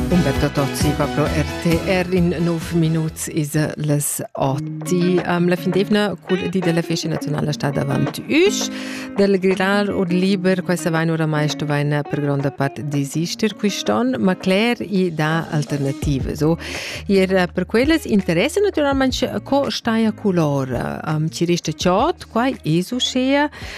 Umberto Tozzi va pro RTR in nov minuts is les oti. Um, la findevna cul di della festa nazionale sta davanti us. Del grillar ur liber, questa vain oramai sto vain per gronda part desister quiston, ma cler i da alternative. So, ir eh, per quellas interesse naturalmente co staia color. Um, ci resta ciot, quai esu schea,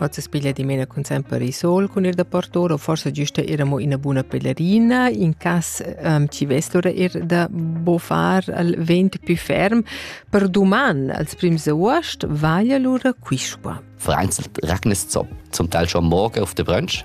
Hoz es piglia dimena cun sempre il sol cun ir da partur o forsa güsta ir amo ina buna pelerina in cas um, chi vestura ir da bofar al vent più ferm per duman als prims aost vaia lura quisqua. Vereinzelt regnet zum Teil schon morgen auf der Brunch.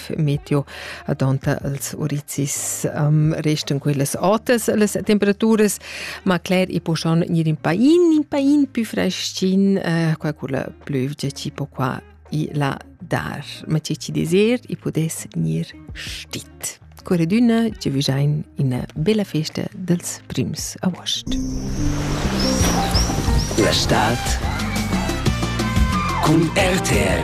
meteo adonta als urizis um, restan quellas altas las temperaturas ma cler i po schon gnir in pain in pain più freschin uh, qua quella plövgia tipo qua i la dar ma ci ci deser i podes gnir stit Corredüna ci vijain ina bella festa dels prims agost. La Stadt cun RTL